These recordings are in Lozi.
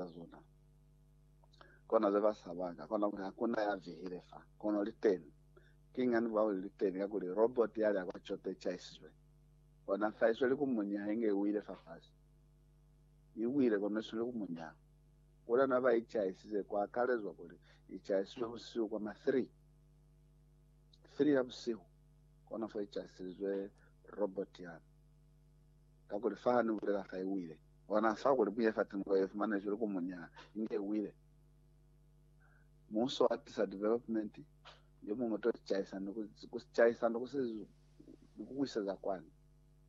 za zona. Kona ze ba saba ka kona kuli hakuna ya vihile fa, kono li teni. Ki ngani ba kuli li teni? Kakuli robot yale ya kwa coto i chaisizwe. Kona fa isweli ku munya ha inge i wile fafasi. I wile kono isweli ku munya. Kuli na ba i chaisize, ku akalezwa kuli i chaisizwe busihu kwa ma 3, 3 ya busihu, kona fo i chaisilizwe robot yale. Kakuli fa ha ni bulela fa i wile, bona fa kuli buye fa tinko ye fumanezwi li ku munya inge i wile. Muuso wa tisa development yo muñwi to caisa ni ku ku caisa ni ku si ni ku kuiseza kwani.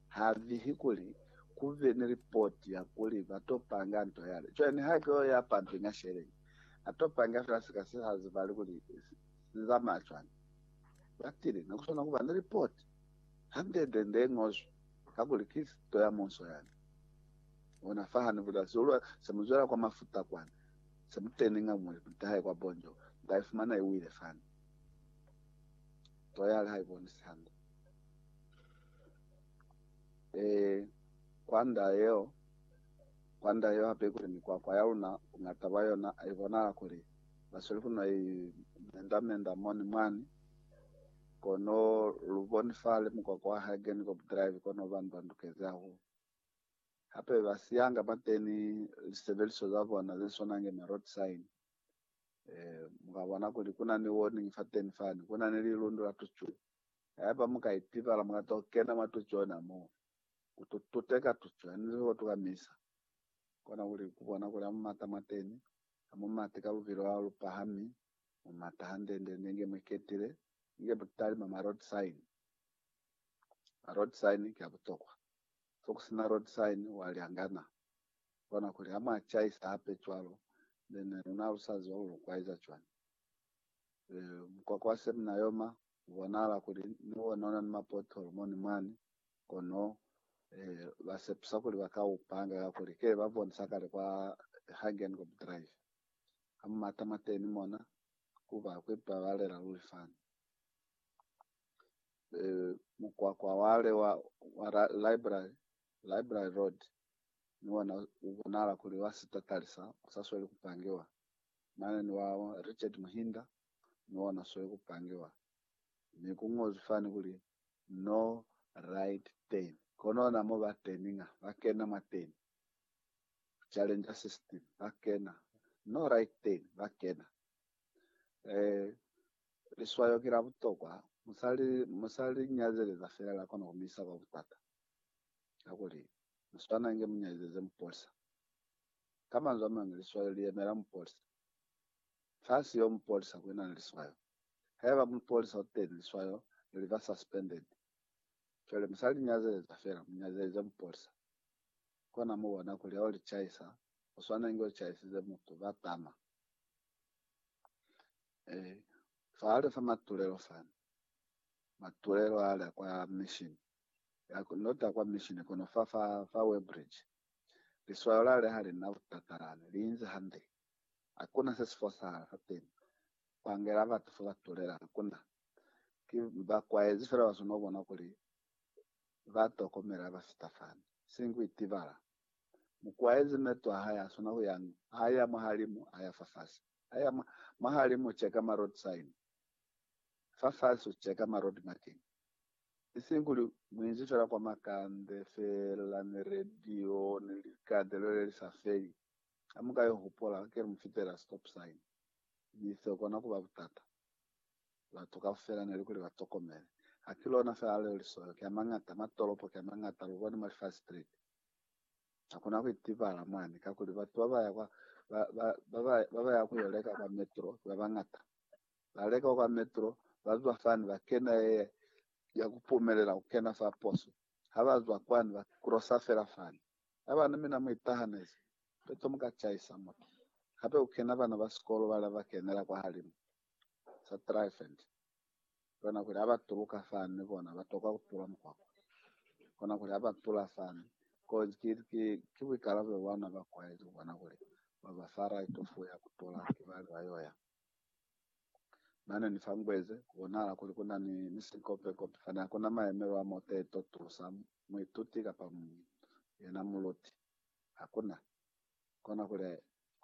Ha vihi kuli ku be ni report ya kuli ba to panga nto yale. Cwale niha ki yo ya pumping a sheleng, a to panga fela sika se sa zibali kuli si zamaya cwani. Ba tile, ne ku swana ku ba ni report hande nde nde ngozwi. Kakuli ki sito ya munso yani. Ona fahani bula zulwe se mu zwela kwa mafuta kwani, se mu teni nga muli ku ntahe kwa bonjo, nda i fumana i wile fani. Toyali ha i bonisi hande. Ee, kwa nda yeo, kwa nda yeo hape kuli mikwakwa ya luna, bungata bwa yona, i bonala kuli ba sweli ku no i menda-menda moni mwani. Kono lu bonifale mukwakwa wa Hagenkop Drive kono bani ba ndukezi hahulu. Hape ba siyanga bateni lisebeliso za bona ze swana nge ma road sign. Eh, mu ka bona kuli ku na ni warning fateni fani. Ku na ni lilundu la tucu. Haiba mu ka itibala, mu ka to kena mwa tucu yona moo, ku to tuteka tucu. Ha ni ko tuka misa, kona kuli ku bona kuli ha mu mata mwateni, ha mu mati ka lubilo la lu pahami. mu mata hande-nde ne nge mwi ketile inge butali mwa ma road sign. Ma road sign ki a butokwa. Fo ku sina road sign wa lyangana. Kona kuli ha mwa chaisa hape cwalo nde ne luna ha lu sa ziba kuli lu kwaiza cwañi. E, mukwakwa wa Semina Yoma u bonahala kuli ni wona una ni ma pothole mo ni mwani, kono e, ba sepusa kuli ba ka u panga kakuli ke ba bonisa kale kwa Hagenkorb Drive. ha mu mata mwateni mona, ku ba kwe ba balela luli fani. E, mukwakwa wale wa, wa ra, library, library road, ni wona u bonala kuli wa sitatali sa, u sa sweli ku pangiwa. Mane ni wa Richard Muhinda, ni wona sweli ku pangiwa. Mi ku ñozwi fani kuli, No right turn. Kono na mo ba turninga, ba kena mwateni. Challenger 16 ba kena, No Right 10 ba kena. Eh, liswayo ki la butokwa. Mu sa li, mu sa li nyazeleza fela, la kona ku mi isa kwa butata. Kakuli, mu swana inge mu nyazeze mupolisa. Ka manzwi a mañwi, liswayo li yemela mupolisa. Fa si yo mupolisa, ku ina ni liswayo. Haiba mupolisa u teni, liswayo li ba suspended. Cwale musali nyazeleza fela, munyazeleze mupolisa. Kona mubona kuli hao lichaisa, uswana inge uchaisize mutu, ba tama. Eh, fahali fa matulelo fani. Matulelo ale kwa mission. Ya, not a kwa mission, kono fa, fa, fa Weybridge. Liswayo lale halina butata lani, liinzi hande. Hakuna se si fosahala fateni. Pangela batu fa ba tulela, hakuna. Ki bakwaezi fela ba swana ku bona kuli ba tokomela ba fita fani. Siñi ku itibala. Mukwaezi meto a hae a swana ku yañi? A ya mwahalimu, a ya fafasi. A ya mwa, mwahalimu u cheka ma road sign. Fafasi u cheka ma road marking. Isiñi kuli mu inzi fela kwa makande fela, ni radio, ni likadelo le li sa feli. Ha mu ka i hupola, hakeli mu fitela stop sign, mi seo kona ku ba butata. Batu kaufela ne li kuli ba tokomele. Ha ki lona fela leo lisoyo ki a mañata, mwa tolopo ki a mañata, lu bone mwa li five street. Ha ku na ku itibala mwani, kakuli batu ba ba ya kwa, ba, ba, ba, ba, ba ba ya ku yo leka kwa metro ki ba bañata. Ba leka kwa metro, ba zwa fani, ba kena ye ya ku pumelela ku kena fa poso. Ha ba zwa kwani, ba crossa fela fani. Haba ni mina mu itahanezi, peto mu ka chaisa mutu. Hape ku kena bana ba sikolo bale ba kenela kwahalimu. Sa Tryphant. Kona kuli haba tuluka fani ni bona ba tokwa ku tula mukwakwa. Kona kuli haba tula fani, kozi ki, ki, ki buikalabelo bwa ona ba kwaezi ku bona kuli ba ba fa raito fu ya ku tula kibali ba yo ya. Nane ni fangwezi ku bonahala kuli ku na ni misikopekope fani ha ku na mayemelo a muteto, tusa muituti kapa yena muluti. Ha ku na. Kona kuli,